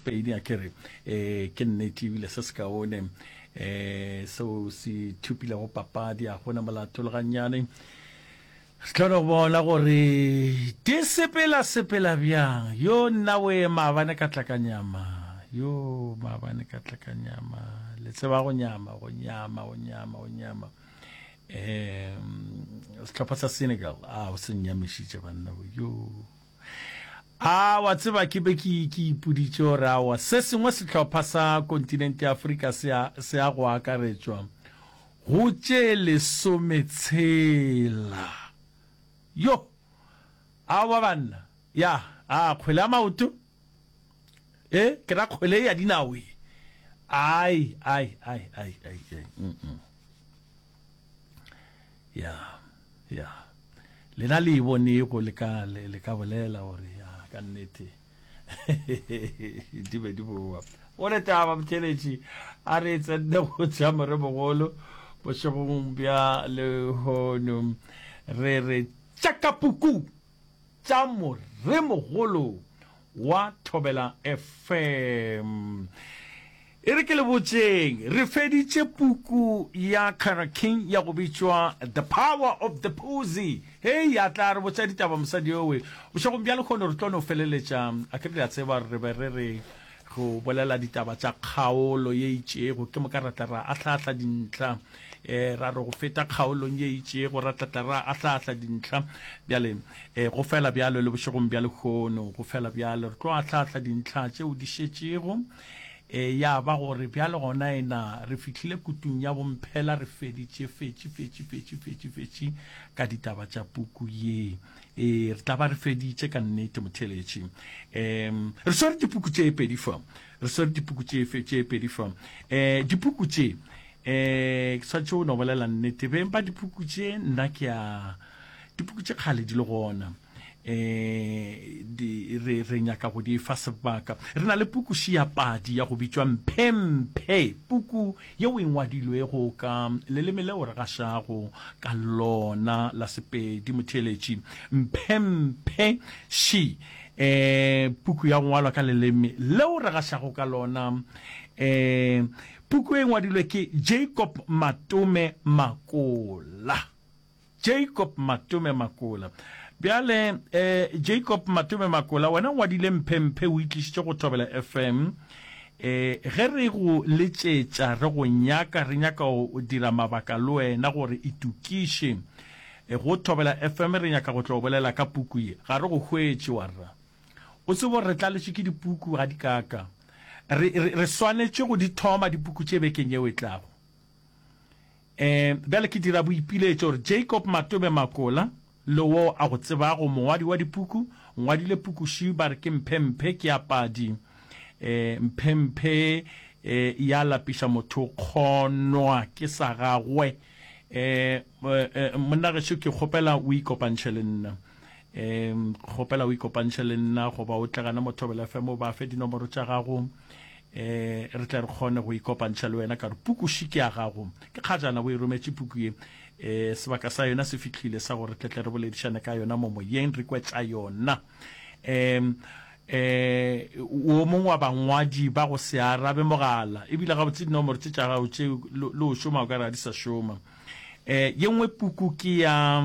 Pedi, a ke re, e, ke nnete, ebile se sekaone, e, seo se thupilego papadi, a gona molato le gannyane. Re kgona go bona gore di sepela sepela bjang. Yo nna o ye maabane ka tla ka nyama, yo maabane ka tla ka nyama, le tseba go nyama, go nyama, go nyama, go nyama. E, sehlopha sa Senegal, a o se nnyamišitše banna, yo. A wa tseba, ke be ke, ke ipoditše gore awa se sengwe sehlopha sa kontinente ya Afrika se a, se a go akaretšwa go tše lesome tshela. Yo! Awa banna, ya, a kgwele ya maoto, e, ke ra kgwele ya dinao ye. Ai, ai, ai, ai, ai, ai, mm-mm. ya ya lena le e bone ko le ka le ka bolela gore ya ka nnete di be di boa o le taba botheletši a re tsenne go tša more mogolo bošegong bja lehono re re tšakapuku tša moremogolo wa Thobela FM. E re ke le botšeng, re feditše puku ya Kara King ya go bitšwa The Power of the Pussy. Hei, a tla re botša ditaba mosadi yowe. Bošegong bja lekgono re tlo no feleletša, a ke re le a tseba, re be re re Go bolela ditaba tša kgaolo ye itšego ke moka ra tla ra ahla-ahla dintlha. E ra re go feta kgaolong ye itšego ra tla tla ra ahla-ahla dintlha. Bjale, e go fela bjalo le bošegong bja lehono, go fela bjalo. Re tlo ahla-ahla dintlha tšeo di šetšego. E ya ba gore bjale gona e na re fihlile kutung ya bomphela, re feditše, fetši, fetši, fetši, fetši, fetši ka ditaba tša puku ye. Ee, re tla ba re feditše ka nnete, motheeletši. Um re swere dipuku tše pedi fa, re swere dipuku tše pedi fa. Um eh, dipuku tše, um ke swantšhe o no bolela nnete, beng ba dipuku tše nna ke a dipuku tše kgale di le gona eh di re re nyaka go di fa sebaka re na le puku ya padi ya go bitšwa mphemphe puku yeo e ngwadilwego ka leleme leo re gašago ka lona la Sepedi. Motheeletši Mphemphe Shi, um puku ya go ngwalwa ka leleme leo re gašago ka lona, um puku e ngwadilwe ke Jacob Matome Makola. Jacob Matome Makola. Bjale eh, Jacob Matome Makola, wena ngwadile mphemphe o itlišitše go Thobela FM. Eh, ge re go letšetša re go nyaka, re nyaka go dira mabaka le wena gore itukiše. Eh, go Thobela FM re nyaka go tlo bolela ka puku ye. Ga re go hwetše warra. O tsebo re tlaletše ke dipuku ga di kaka. Re, re, re swanetše go di thoma dipuku tše bekeng yeo e tlago. Ee, bjale ke dira boipiletšo gore Jacob Matobe Makola, le wo a go tsebago, mongwadi wa dipuku, ngwadile puku ši ba re ke mphemphe ke ya padi. Ee, mphemphe ee, e ya lapiša motho kgonwa ke sa gagwe. Ee, ee, monna gešo ke kgopela o ikopantšhe le nna. Ee, kgopela o ikopantšhe le nna goba o tle gana mo Thobela FM o ba fe dinomoro tša gago. E, re tle re kgone go ikopantšha le wena ka gore pukuši ke ya gago. Ke kgajana bo e rometše puku ye. E, sebaka sa yona se fihlile sa gore tle tle re boledišane ka yona mo moyeng, re kwe tša yona. E, e, o mongwe wa bangwadi ba go se arabe mogala, ebile gabotse dinomoro tše tša gago tše le o šoma o ka re ga di sa šoma. E, ye nngwe puku ke ya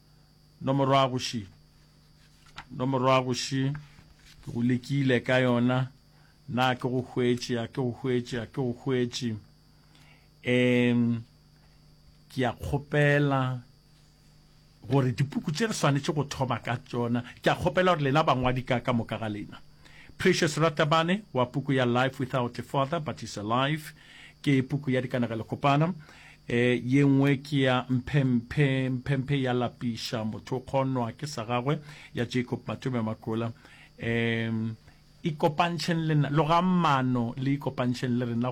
Nomorwago še, nomorwago še, ke go lekile ka yona, na ke go hwetše, a ke go hwetše, a ke go hwetše. Um, ke a kgopela gore dipuku tše re swanetše go thoma ka tsona, ke a kgopela gore lena bangwadi ka ka moka ga lena. Precious Ratabane wa puku ya Life Without a Father But Is Alive, ke puku ya dikanegelo kopana. E yengwe ke ya Mphemphe. Mphemphe ya lapiša motho o kgonwa ke sa gagwe ya Jacob Matome Makola. E ikopantšheng le nna, logang mano le ikopantšheng le rena go.